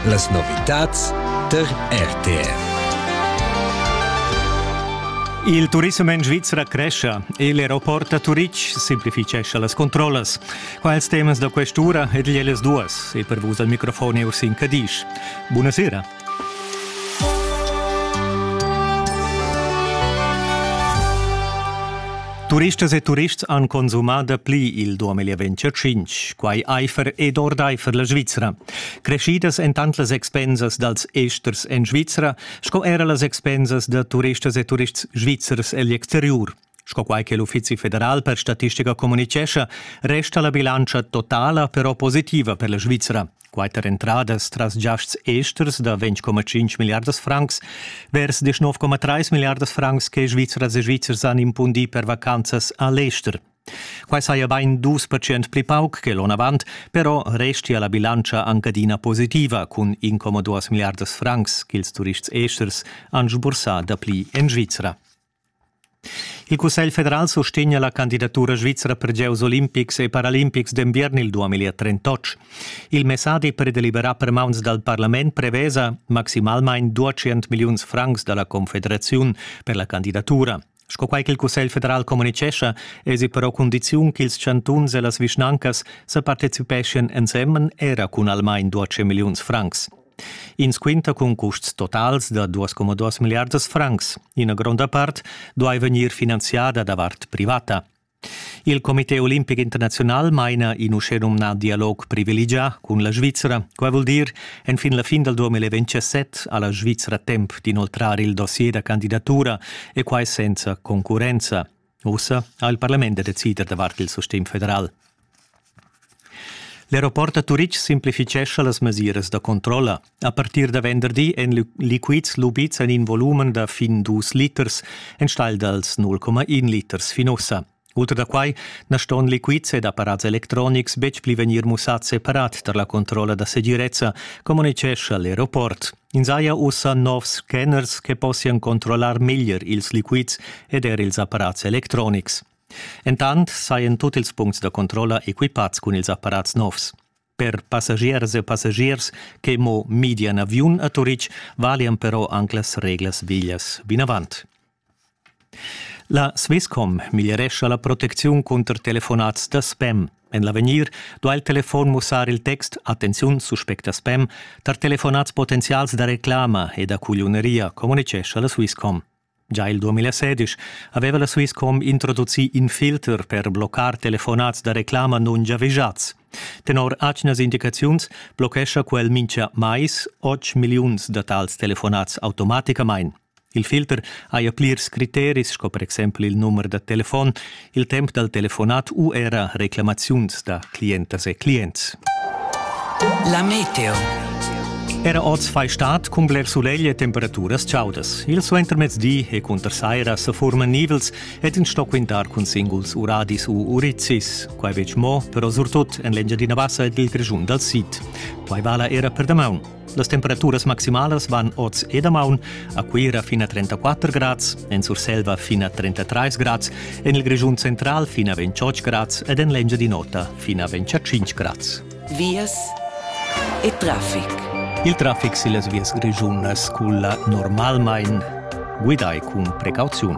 Las novitads tar RTR. Il turism en Svizra crescia e l'aeroport da Turitg simplifitgescha las controllas. Qua ils temas da quest'ura ed ellas duas e per vus al microfon è Ursin Cadisch. Buonasera. Turistas e turists han consumà dapli il 2025, quai aifer ed ordaifer la Svizra. Creschidas èn tant las expensas dals esters en Svizra sco era las expensas da turistas e turists svizzers egl exteriur. Sco quai che l'Uffizi federal per statistica communitgescha, resta la bilantscha totala però positiva per la Svizra. Quatter entradas tras giasts esters da 20,5 milliardas francs vers 19,3 milliardas francs che Svizras e Svizzers han impundì per vacanzas a l'ester. Quai saja bain dus percent pli pauc che l'onn avant, però restia la bilantscha anc adina positiva cun incomoduas milliardas francs ch'ils turists esters han sbursà dapli en Svizra. Il Cussegl federal sustegna la candidatura svizra per gieus olimpics e paralimpics d'enviern il 2038. Il messadi per deliberar per mauns dal parlament prevesa maximalmain 200 milliuns francs da la Confederaziun per la candidatura. Sco quai ch'il Cussegl federal communitgescha, èsi però cundiziun ch'ils chantuns e las vischnancas sa participeschien ensemen era cun almain 200 milliuns francs. Ins quinta cun custs totals da 2,2 milliardas francs. Ina gronda part duai vegnir finanziada da vart privata. Il Comité olimpic internaziunal maina in uschenumnà dialog privilegià cun la Svizzera. Quai vul dir, enfin la fin dal 2027 ha la Svizzera temp d'inoltrar il dossier da candidatura e quai senza concurrenza. Ussa ha il parlament da decider davart il sustegn federal. L'aeroport a Turitg simplifitgescha las mesiras da controlla. A partir da venderdi èn liquids lubids en in volumen da fin dus liters, enstagl dals 0,1 liters fin ussa. Ultra da quai na ston liquids ed apparats electronics betg pli vegnir mussads separat tar la controlla da segirezza, communitgescha l'aeroport. Ins haja ussa novs scanners che possian controllar meglier ils liquids ed er ils apparats electronics. Entant sajan tut ils puncts da controlla equipads cun ils apparats novs. Per passagiers e passagiers che mo midian aviun a Turitg valian però anc las reglas veglias vinavant. La Swisscom miglierescha la protecziun cunter telefonats da spam. En l'avegnir duai il telefon mussar il text Attenziun, suspecta spam tar telefonats potenzials da reclama e da cugliuneria, communitgescha la Swisscom. Già il 2016 aveva la Swisscom introducì in filter per bloccar telefonats da reclama non giavischats. Tenor atgnas indicaziuns blochescha quel mincha mais 8 milliuns da tals telefonats automaticamain. Il filter haja plirs criteris sco per exempel il numer da telefon, il temp dal telefonat u era reclamaziuns da clientas e clients. La meteo. Era oz fai stat cun bler sulegl e temperaturas chaudas. Il suentermezdi e cunter saira sa furman nivels ed in sto quintar cun singuls uradis u urizzis. Quai betg mo, però surtut en l'Engiadina Bassa ed il Grischun dal Sid. Quai vala era per damaun. Las temperaturas maximalas van oz e damaun a Cuira fin a 34 grads, en Surselva fin a 33 grads, en il Grischun central fin a 28 grads ed en l'Engiadin'Ota fin a 25 grads. Vias e traffic. Il traffic sillas vias grischunas culla normalmein guidai cun precauziun.